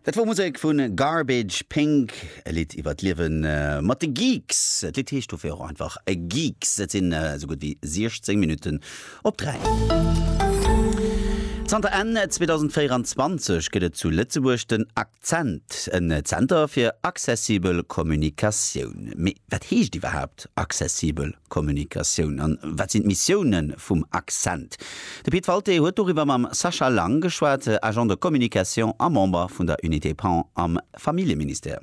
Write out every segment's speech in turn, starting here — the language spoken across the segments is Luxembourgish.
Dat wor Musek vu Garbage Pink, e Lidd iwwer d'Liewe mat de Geeks. D'Lidd heescht dofir och einfach Geeks. Et sinn esou gutt wéi 16 Minutten op 3. Zanter Enn 2024 gëtt et zu Lëtzebuerg den. Cent, en Zenter fir accessibel Kommunikatioun. Mee wat heescht iwwerhaapt accessibel Kommunikatioun an wat sinn d'Missioune vum Accent? De Pit Walté huet doriwwer mam Sascha Lang geschwat, Agent de communication a Member vun der Unité Pan am Familljeministère.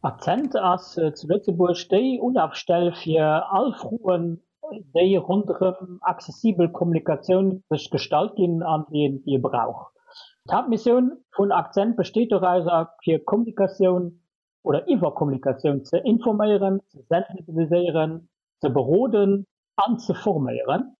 Accent ass zu Lëtzebuerg déi Ulafstell fir all Froen déi ronderëm accessibel Kommunikatioun sech gestallt ginn an déi ee brauch. D'Haaptmissioun vun Akzent besteet dorauser, fir Kommunikatioun oder iwwer Kommunikatioun ze informéieren, ze sensibiliséieren, ze beroden an ze forméieren.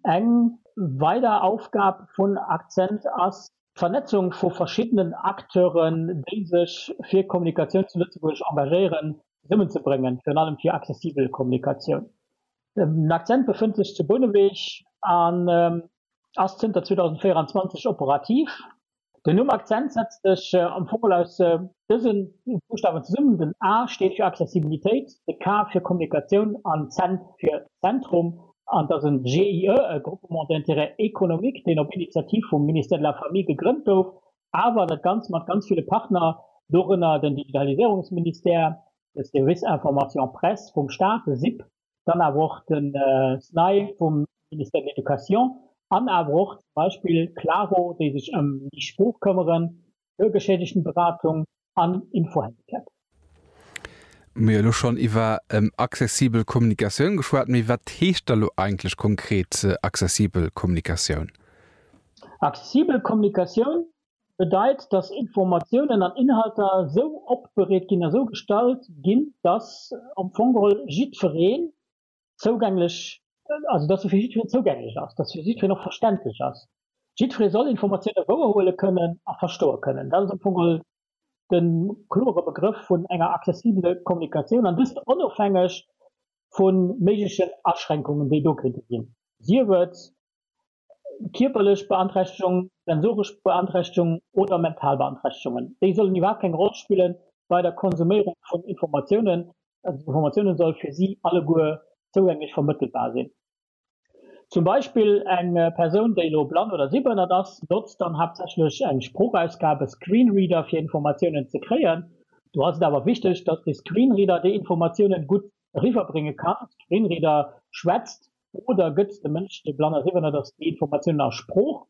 Eng weider Aufgab vun Akzent ass, D'Vernetzung vu verschiddenen Acteuren, déi sech fir Kommunikatioun zu Lëtzebuerg engagéieren, zesummenzebréngen, virun allem fir accessibel Kommunikatioun. Den Accent befënnt sech zu Bouneweg an ass zënter 2024 operativ. Den Numm Accent setzt sech am Fong aus dëse Buschtawen zesummen, den A steet fir Accessibilitéit, de K fir Kommunikatioun an Cent fir Zentrum. An et ass e GIE, e Groupement d'intérêt économique, deen op Initiativ vum Ministère de la Famille gegrënnt gouf, awer dat Ganzt mat ganz ville Partner, dorënner den Digitaliséierungsministère, de Service information presse vum Staat, de SIP, dann awer och de SNAI vum Ministère de l'Éducation an awer och zum Beispill Claro, déi sech ëm déi Sprooch këmmeren, Bürgerschädigenberatung an Info-Handicap. Mir hu elo schonn iwwer accessibel Kommunikatioun geschwat, mee wat heescht da lo eigentlech konkret accessibel Kommunikatioun? Accessibel Kommunikatioun bedeit, dass Informatiounen an Inhalter esou opbereet ginn, esou gestalt ginn, dass am Fong geholl jiddweree zougänglech, also datt se fir jiddwereen zougänglech ass, datt se fir jiddwereen och verständlech ass. Jiddweree soll Informatioune wouerhuele kënnen a verstoe kënnen. Dat ass am Fong mol de klore Begrëff vun enger accessibele Kommunikatioun, an dëst onofhängeg vu méiglechen Aschränkungen, déi do kéinte ginn, sief et Kierperlech Beanträchtegung, sensoresch Beanträchtegung oder mental Beanträchtegungen, déi sollen iwwerhaapt keng Roll spille bei der Konsuméierung vun Informatiounen. D'Informatioune soll fir si alleguer zougänglech vermëttelbar sinn. Zum Beispill eng Persoun, déi elo blann oder sehbehënnert ass, notzt dann haaptsächlech eng Sproochausgabe, Screenreader, fir Informatiounen ze kréien. Do ass et awer wichteg, datt de Screenreader déi Informatiounen gutt eriwwerbrénge kann. Screenreader schwätzt oder gëtt de Mënsch, dee blann a siwwernert ass, déi Informatiounen a Sprooch.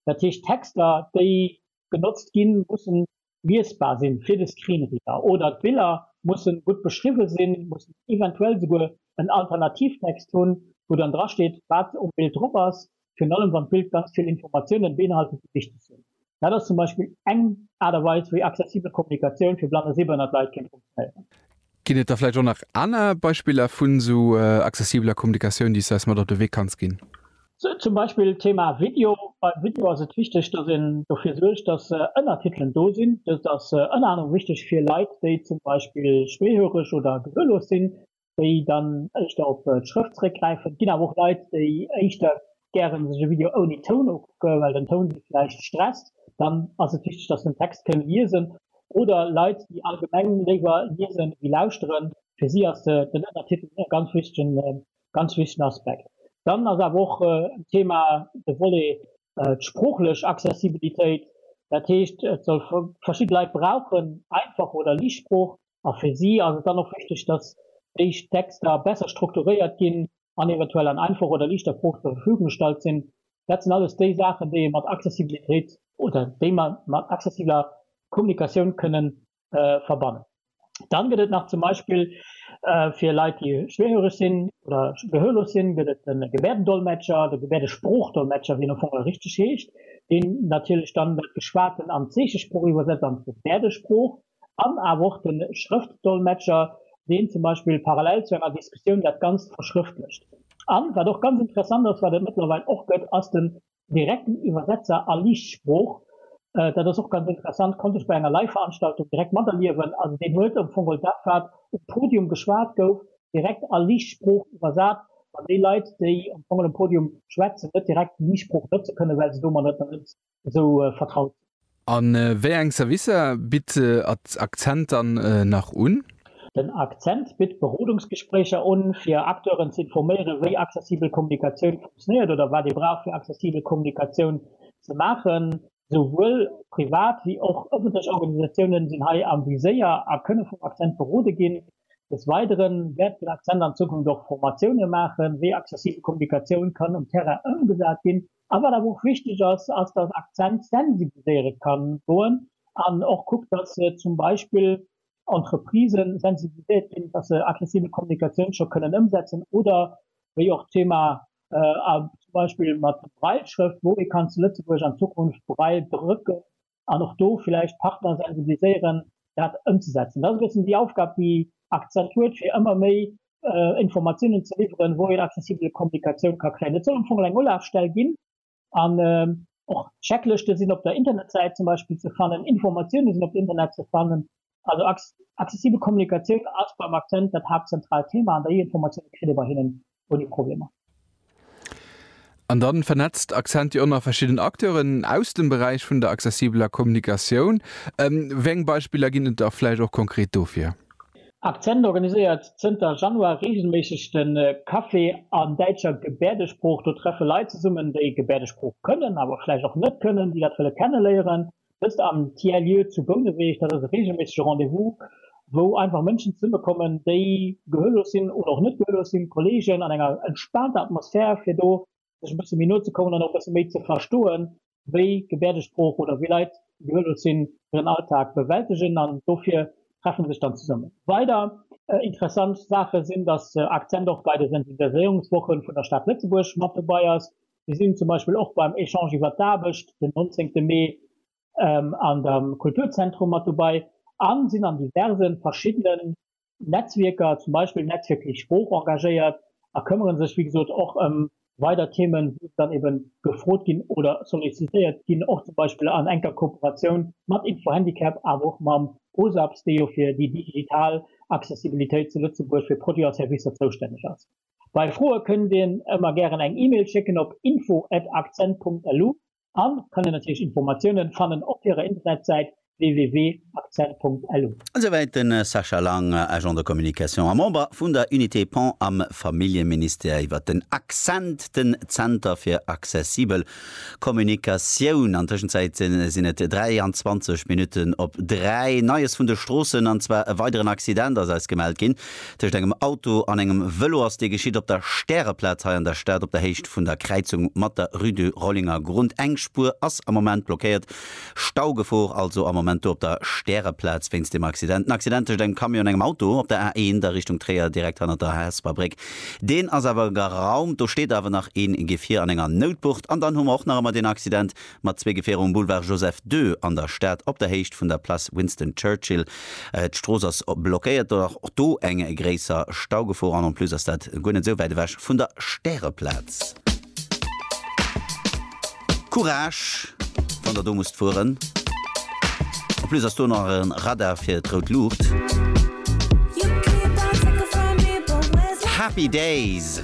Dat heescht, d'Texter, déi genotzt ginn, mussen liesbar sinn fir de Screenreader oder d'Biller mussen gutt beschriwwen sinn, mussen eventuell esouguer en Alternativtext hunn, wou dann drasteet, wat um Bild drop ass, virun allem wann d'Bild ganz vill Informatiounen beinhaltet, déi wichteg sinn. Dat ass zum Beispill eng Aart a Weis, wéi accessibel Kommunikatioun fir blann a sehbehënnert Leit kéint funktionéieren. Ginn et da vläicht och nach aner Beispiller vun esou accessibeler Kommunikatioun, déi s de eis mat op de Wee kanns ginn? Zum Beispill d'Thema Video. Beim Video ass et wichteg, dass een dofir suergt, dass Ënnertitelen do sinn. Dëst ass ënner anerem wichteg fir Leit, déi zum Beispill schwéihöreg oder gehörlos sinn. déi dann éischter op d'Schrëft zeréckgräifen. Et ginn awer och Leit, déi éischter gäre sech e Video ouni Toun ukucke well den Toun si vläicht stresst. Dann ass et wichteg, datt se den Text kënne liesen. Oder Leit, déi allgemeng léiwer liese wéi lauschteren, fir si ass den Ënnertitel e ganz wichtegen, ganz wichtegen Aspekt. Dann ass awer och en Thema de Volet d'sproochlech Accessibilitéit. Dat heescht, et soll, verschidde Leit brauchen einfach oder liicht Sprooch, A fir si ass et dann och wichteg, dass déi Texter besser strukturéiert ginn an eventuell an einfach oder liichter Proof zur Verfügung gestallt sinn. Dat sinn alles déi Saachen, déi ee mat Accessibilitéit, oder déi mer mat accessibeler Kommunikatioun kënnen verbannen. Dann gëtt et nach zum Beispill fir Leit, déi schwierhöreg sinn oder gehörlos sinn, gëtt et de Gebärdendolmetscher, de Gebärdesprooch-Dolmetscher, wéi en am Fong och richteg heescht, deen natierlech dann dat Geschwaten an d'Zeechesprooch iwwersetzt, an d'Gebärdesprooch. An awer och de Schrëftdolmetscher, deen zum Beispill parallel zu enger Diskussioun dat Ganzt verschrëftlecht. An, wat och ganz interessant ass, wat et mëttlerweil och gëtt, ass den direkten Iwwersetzer a Liichtsprooch. Dat ass och ganz interessant, konnt ech bei enger Live-Veranstaltung direkt materliewen. Also deen huet am Fong geholl dat, wat um Podium geschwat gouf, direkt a Liichtsprooch iwwersat, wann déi Leit, déi am Fong geholl um Podium schwätzen, net direkt d'Liichtsprooch notze kënnen, well se domadder net esou vertraut. A wéi eng Servicer bitt Accent dann nach un? Den Accent bitt Berodungsgespréicher un, fir Acteuren ze informéieren, wéi accessibel Kommunikatioun funktionéiert oder wat ee brauch, fir accessibel Kommunikatioun ze maachen. Souwuel privat wéi och ëffentlech Organisatiounen sinn hei am Viséier a kënne vum Accent berode ginn. Des Weidere wäert den Accent an Zukunft och Formatioune maachen, wéi accessibel Kommunikatioun kann um Terrain ëmgesat ginn. A wat awer och wichteg ass, ass dass Accent sensibiliséiere ka goen an och kuckt, dass zum Beispill Entreprisë sensibiliséiert ginn, dass se aggressive Kommunikatioun scho kënnen ëmsetzen oder wéi och d'Thema zum Beispill mat Braille-Schrëft, wou ee kann zu Lëtzebuerg an Zukunft Braille-Brécken an och do villäicht d'Partner sensibiliséieren, dat ëmzesetzen. Dat ass e bëssen déi Aufgab, déi Accent huet, fir ëmmer méi Informatiounen ze liwweren, wou een accessibel Kommunikatioun ka kréien. Et soll am Fong eng Ulafstell ginn an och d'Checklëschte sinn op der Internetsäit zum Beispill ze fannen, Informatiounen sinn op der Internetsäit ze fannen, Also accessibel Kommunikatioun ass beim Accent dat haaptzentraalt Thema, an der E-Informatioun kritt ee bei hinnen ouni Problemer. An dann vernetzt Accent jo och nach verschidden Acteuren aus dem Beräich vun der accessibeler Kommunikatioun. Wéi eng Beispiller ginn et da vläicht och konkret dofir? Accent organiséiert zënter Januar reegelméisseg de Café an däitscher Gebäerdesprooch. Do treffe Leit zesummen, déi Gebäerdesprooch kënnen, awer vläicht och net kënnen, déi dat wëlle kenneléieren. Dëst am Tiers-Lieu zu Bouneweg, dat ass e reegelméissege Rendez-vous, wou einfach Mënschen zesummekommen, déi gehörlos sinn oder och net gehörlos sinn, Kolleegen an enger entspaanter Atmosphär, fir do sech e bësse méi no ze kommen an och e bësse méi ze verstoen, wéi Gebäerdesprooch oder wéi Leit, déi gehörlos sinn, hiren Alltag bewältegen. An dofir treffe se sech dann zesummen. Weider interessant Saache sinn, dass Akzent och bei de Sensibiliséierungswoche vun der Stad Lëtzebuerg mat dobäi ass, Mir sinn zum Beispill och beim Echange iwwert d'Aarbecht den 19 Mee an der Kulturzentrum mat dobei a sinn an diverse verschiddene Netzwierker, zum Beispill Netzwierk Eis Sprooch, engagéiert a këmmere sech wéi gesot och ëm weider Themen, wou se dann ebe gefrot ginn oder sollicitéiert ginn, och zum Beispill an enker Kooperatioun mat Info Handicap awer och mam OSAPS, dee jo fir déi digital Accessibilitéit zu Lëtzebuerg fir Produiten a Servicer zoustänneg ass. Bei Froe kënnt dir ëmmer gären eng Email schécken op info at accent.lu an kann dir natierlech Informatiounen fannen op hirer Internetsäit www.accent.lu. Esouwäit de Sascha Lang, Agent de communication a Member vun der Unité Pont am Familljeministère iwwert den Accent, den Zenter fir accessibel Kommunikatioun. An Tëschenzäit sinn et 23 Minutten op 3. Neies vun de Stroossen, an zwar e weideren Accident ass eis gemellt ginn. Tëscht engem Auto an engem Vëlo ass dee geschitt op der Stäreplaz hei an der Stad, op der Héicht vun der Kräizung mat der Rue du Rollingergrund. Eng Spuer ass am Moment blockéiert. Staugefor also am Moment do op der Stäreplaz wéinst deem Accident. En Accident tëscht engem Camion an engem Auto op der A1 a Richtung Tréier, direkt hannert der Hesper Bréck. Deen ass awer geraumt. Do steet awer nach een Gefier an enger Noutbucht. An dann hu mer och nach emmer deen Accident mat zwee Gefierer um Boulevard Joseph ii an der Stad op der Héicht vun der Place Winston Churchill. D'Strooss ass blockéiert. Do och do eng gréisser Staugefor an en plus ass dat guer net esou wäit ewech vun der Stäreplaz. Courage wann der do musst fueren. En plus ass do nach e Radar fir d'rout Luucht. Happy Days!